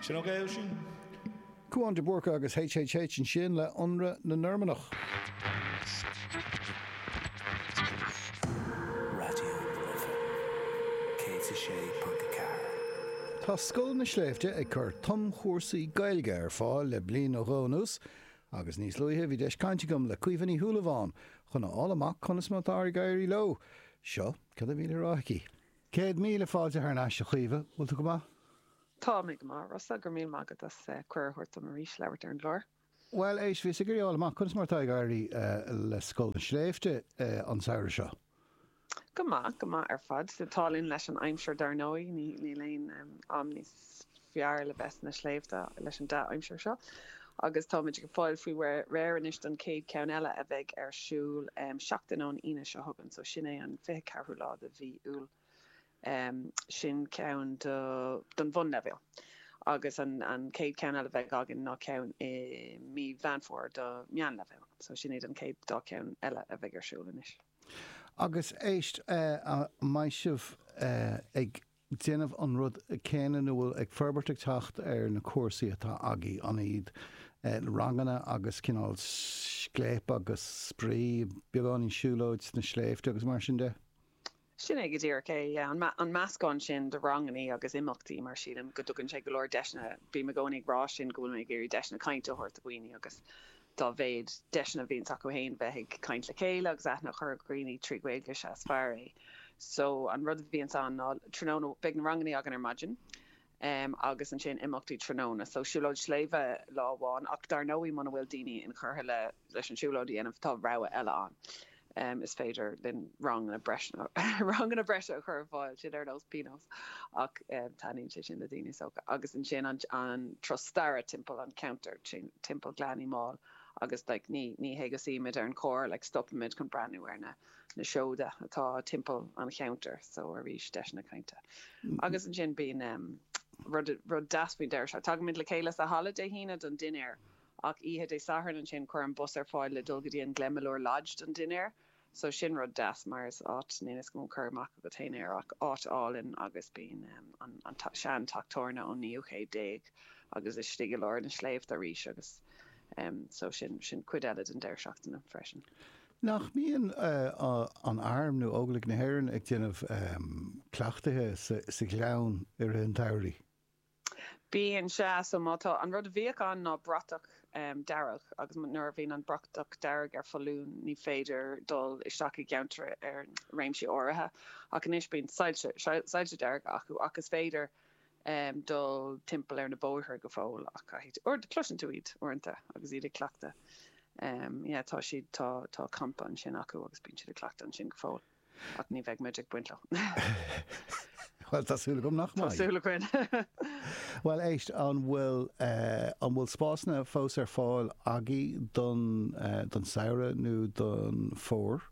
Sin ok é sin? Cúán de Búrca agus HHH ansin le ionradh na Normannach. Raidió na Life 106.4. Tá Scoil na Sléibhte ag cur tumchúrsaí Gaeilge ar fáil le bliain nó dhó anuas agus níos luaithe bhí deis caint agam le Caoimhe Ní Shúilleabháin chun a fháil amach conas mar atá ag éirí leo. Seo cad a bhí le rá aici. Céad míle fáilte thar n-ais a Chaoimhe, bhfuil tú go maith? Tá mé go maith a Rossa, go raibh míle maith agat as cuireadh a thabhairt dom arís labhairt ar an gclár. Bhuel, éist, bhíos ag iarraidh fháil amach conas mar atá ag éirí le Scoil na Sléibhte an samhradh seo? Go maith, go maith ar fad. Tá an t-ádh linn leis an aimsir dar ndóigh, níl aon am níos fearr le bheith sna sléibhte leis an dea-aimsir seo agus táimid ag fáil faoi réir anois don chéad cheann eile a bheidh ar siúl seachtain ón Aoine seo chugainn so sin é an fiche ceathrú lá de mhí Iúil sin ceann do don bhunleibhéal agus an an chéad ceann eile bheidh againn ná ceann i mí Mheán Fómhair do meánleibhéal so sin iad an chéad dá cheann eile a bheidh ar siúl anois. Agus éist eh an mbeidh sibh eh ag déanamh an rud céanna nó bhfuil ag forbairt ag teacht ar na cúrsaí atá agaibh, an iad ranganna agus cineál scléip agus spraoi, beagáinín siúlóid sna sléibhte agus mar sin de? Sin é go díreach é, yeah. An, an meascán sin de rangannaí agus imeachtaí mar sílim go dtugann sé go leor deiseanna, bím i gcónaí ag rá sin go bhfuil mé ag iarraidh deiseanna cainte a thabhairt do dhaoine agus dá mhéad deiseanna a bhíonns acu féin bheith ag caint le chéile agus aithne a chur ar dhaoine trí Ghaeilge is ea is fearr é. So an rud a bhíonns ann ná tráthnóna beidh na rangannaí againn ar maidin em agus ansin imeachtaí tráthnóna. So siúlóid sléibhe lá amháin ach dar ndóigh muna bhfuil daoine inchurtha le leis an siúlóid a dhéanamh tá rogha eile ann. Is féidir linn ranganna breise a chur ar fáil, sin ar nós pionós, ach taitníonn sé sin le daoine is dócha. Agus ansin an turas staire timpeall an cheantair, timpeall Ghleann Uí Máil agus ní hé go suímid sa charr, stopaimid chun breathnú ar na seoda atá timpeall an cheantair. So arís, deiseanna cainte. Agus ansin bíonn rud deas faoin deireadh seachtaine, tagaimid le chéile sa halla Dé hAoine don dinnéar Ach oíche Dé Sathairn ansin, cuireann muid bus ar fáil le dul go dtí an Glenmalure Lodge don dinnéar. So, sin rud deas, mar is áit, níl a fhios agam an cur amach agat féin air, ach áit álainn agus bíonn an sean teach tabhairne ón naoú chéad déag agus istigh i lár na sléibhte arís agus so, sin, sin cuid eile den deireadh seachtaine freisin. Nach mbíonn an Arm nó Óglaigh na hÉireann ag déanamh cleachtaithe sa ghleann i rith an tsamhraidh? Bíonn, sea. So má tá, an rud a bhíodh ann ná bratach dearg agus nuair a bhíonn an bratach dearg ar foluain ní féidir dul isteach i gceantar ar réimsí áirithe ach anois bíonn soilse, soilse dearga acu ach is féidir dul timpeall ar na bóithre go fóill ach caithfidh tú, cloiseann tú iad uaireanta agus iad ag cleachtadh, yeah tá siad, tá campa ansin acu agus bíonn siad ag cleachtadh ansin go fóill. Ach ní bheidh muid ag baint leo. Well tá súil agam nach Tá súil againn. Well éist an bhfuil eh, an bhfuil spásanna fós ar fáil agaibh don eh, don samhradh nó don fómhar?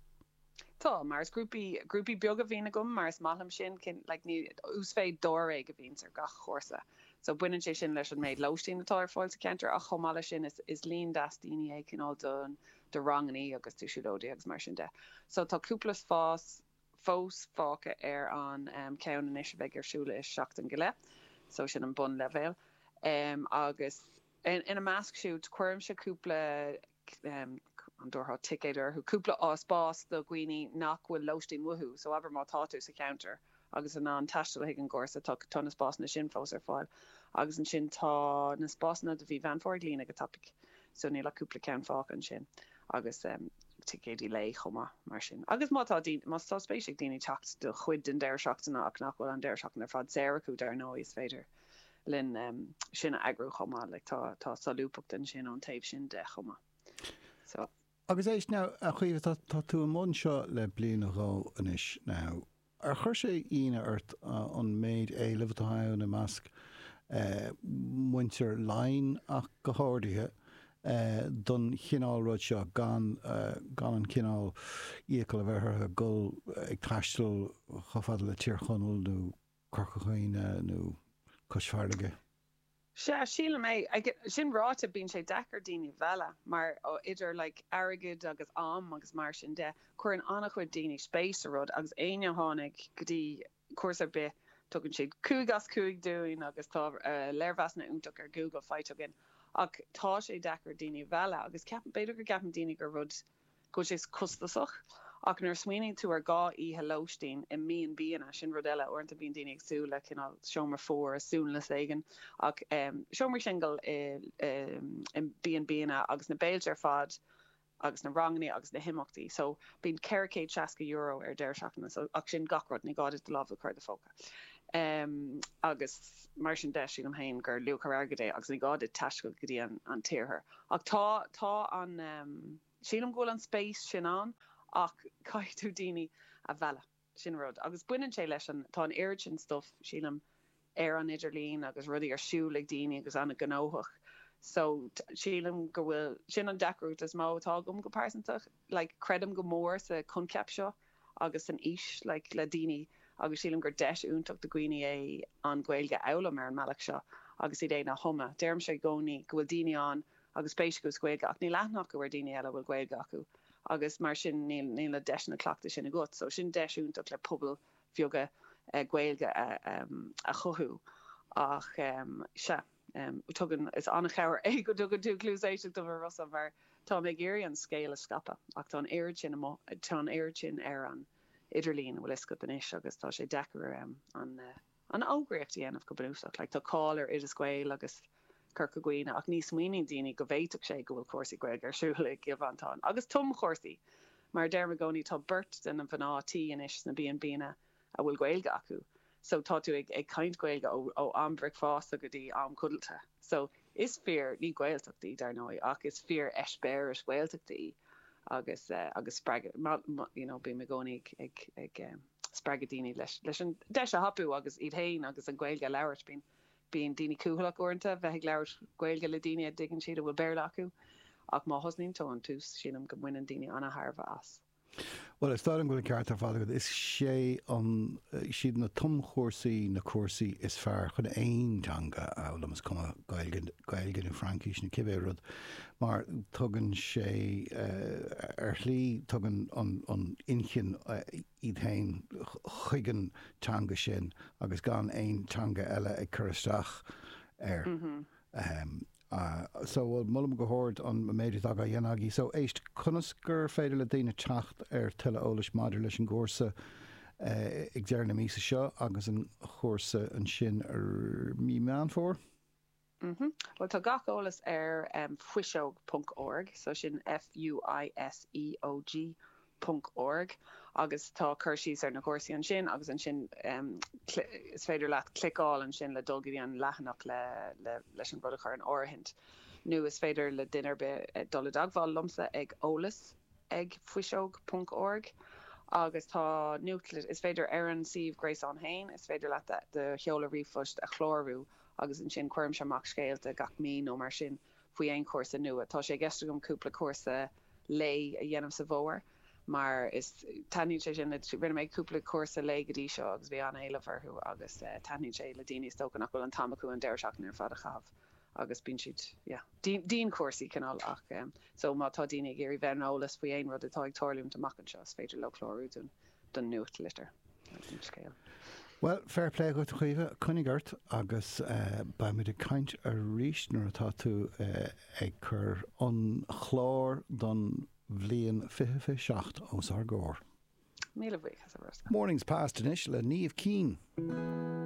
Tá, mar is grúpaí, grúpaí beaga a bhíonn agam mar is maith liom sin, cinn, like, ní, uasmhéid dáréag a bhíonns ar gach chúrsa. So baineann sé sin leis an méid lóistín atá ar fáil sa cheantar ach chomh maith leis sin is, is líon deas daoine é cineál don, do rangannaí agus do siúlóidí agus mar sin de. So tá cúpla spás fós fágtha ar an cheann anois a bheidh ar siúl i seachtain go leith. So sin an bunleibhéal. Agus ina measc siúd cuirimse cúpla, an dtabharfá ticéad orthu, cúpla spás do dhaoine nach bhfuil lóistín uathu. So abair má tá tú sa cheantar agus in ann taisteal chuig an gcúrsa. Tá na spásanna sin fós ar fáil. Agus ansin tá na spásanna do mhí Mheán Fómhair ag líonadh go tapaidh, so níl ach cúpla ceann fágtha ansin. Agus ticéidí lae chomh maith. Mar sin, agus má tá daoine, má tá spéis ag daoine teacht do chuid den deireadh seachtaine ach nach bhfuil an deireadh seachtaine ar fad saor acu, dar ndóigh, is féidir linn sin a eagrú chomh maith. Like, tá, tá solúbthacht ansin ón taobh sin de chomh maith. So. Agus éist now, a Chaoimhe, tá, tá tú i mbun seo le bliain nó dhó anois now. Ar chuir sé ionadh ort an méid éilimh atá ann i measc muintir Laighean ach go háirithe, don chineál rud seo, gan an cineál iachall a bheith orthu ag dul ag taisteal chomh fada le Tír Chonaill nó Corca Dhuibhne nó Cois Fharraige? Sea, sílim é. Sin ráite, bíonn sé deacair daoine a mhealladh, mar idir like airgead agus am agus mar sin de, cuireann an-chuid daoine spéis sa rud agus éinne a tháinig go dtí cúrsa ar bith, tugann siad cúig as cúig dúinn agus tá léirmheasanna iontach ar Google faighte againn ach tá sé deacair daoine a mhealladh agus ceapaim, b'fhéidir go gceapann daoine gur rud. go bhfuil sé costasach, ach nuair a smaoiníonn tú ar dhá oíche lóistín i mB&Banna, sin rud eile, uaireanta bíonn daoine ag súil le cineál seomra fuar i suanlios éigin, ach seomraí singil i mB&Banna agus na béilte ar fad agus na ranganna agus na himeachtaí, so bíonn ceithre chéad seasca euro ar deireadh seachtaine, so ach sin gach rud, ní gá duit do lámh a chur i do phóca, agus mar sin de, sílim féin gur luach ar airgead é agus ní gá duit taisteal go dtí an tIarthar Ach tá, tá an, sílim go bhfuil an spéis sin ann ach caithfidh tú daoine a mhealladh, sin rud. Agus baineann sé leis an, tá an oiread sin stuff, sílim, ar an idirlíon agus rudaí ar siúl ag daoine agus an-ghnóthach. So sílim go bhfuil, sin an deacracht is mó atá agam go pearsanta. like creidim go mór sa coincheap seo agus san fhís like le daoine agus sílim gur deis iontach do dhaoine é an Ghaeilge a fhoghlaim ar an mbealach seo agus iad fhéin a thumadh. Deirimse i gcónaí go bhfuil daoine ann agus spéis acu sa Ghaeilge ach níl aithne acu ar dhaoine eile a bhfuil Gaeilge acu agus mar sin níl níl na deiseanna cleachtaidh sin agat so sin deis iontach le pobail bheaga Gaeilge a chothú ach sea. Tugann, is an-chabhair é go dtugann tú cluas éisteachta dom, a Rossa, mar táim ag iarraidh an scéal a scaipeadh, ach tá an oiread sin amuigh, tá an oiread sin ar an idirlíon, an bhfuil 'fhios agat anois, agus tá sé deacair an fhógraíocht a dhéanamh go bunúsach. Like, tá cáil ar Oideas Gael agus Corca Dhuibhne, ach ní smaoiníonn daoine go bhféadfadh sé go bhfuil cúrsaí Gaeilge ar siúl i gCill Mhantáin, agus tum-chúrsaí! Mar a deirim i gcónaí, tá beirt de na mhná tí anois sna B&Bnna, a bhfuil Gaeilge acu so tá tú ag caint Gaeilge ó am bricfeasta go dtí am codlata so is fíor, ní Gaeltacht í dar ndóigh ach is fíor eispéireas Gaeltachta í agus agus spreagadh you know bím i gcónaí ag ag spreagadh daoine leis leis an deis a thapú agus iad féin agus an Ghaeilge a labhairt bíonn bíonn daoine cúthaileach uaireanta bheith ag labhairt Gaeilge le daoine a dtuigeann siad a bhfuil Béarla acu ach má thosnaíonn tú ón tús sílim go mbaineann daoine ana-thairbhe as. Bhuel, is dóigh liom go bhfuil an ceart ar fad agat. Is sé an, siad na tumchúrsaí na cúrsaí is fearr chun aon teanga a fhoghlaim, is cuma Gaeilge nó Fraincis nó cibé rud, mar tugann sé, ar shlí, tugann an an inchinn iad féin chuig an teanga sin agus gan aon teanga eile ag cur isteach air. Ah, so, bhuel, molaim go hard an méid atá á dhéanamh agaibh. So, éist, conas gur féidir le daoine teacht ar tuilleadh eolais maidir leis an gcúrsa ag deireadh na míosa seo agus an cúrsa ansin i mí Mheán Fómhair? Mm-hm. Bhuel, tá gach eolas ar em, fuiseog ponc org, so sin F-u-i-s-e-o-g ponc org agus tá cur síos ar na cúrsaí ansin agus ansin is féidir leat cliceáil ansin le dul go dtí an leathanach le leis an rud a chur in áirithint nó is féidir le duine ar bith dul i dteagmháil liomsa ag eolas ag fuiseog ponc org agus tá nuachtli is féidir ar an suíomh gréasáin féin is féidir leat do sheoladh ríomhphoist a chlárú agus ansin cuirimse amach scéalta gach mí nó mar sin. faoi aon chúrsa nua. Tá sé i gceist agam cúpla cúrsa lae a dhéanamh sa bhfómhar mar is taitníonn sé sin le, rinne mé cúpla cúrsa lae go dtí seo agus bhí an-éileamh orthu agus taitníonn sé le daoine is dócha nach bhfuil an t-am acu an deireadh seachtaine ar fad a chaitheamh agus bíonn siad yeah dianchúrsaí cineál ach so má tá daoine ag iarraidh bheith ar an eolas faoi aon rud atá ag tarlúint amach anseo is féidir leo clárú dúinn. don nuachtlitir agus don scéal. Bhuel, fair play dhuit a Chaoimhe, coinnigh ort agus beidh muid ag caint arís nuair atá tú ag cur an chláir don bhliain fiche fiche seacht os ár gcomhair. Míle buíochas a Roscoe. Mornings Past anois le Niamh Keane.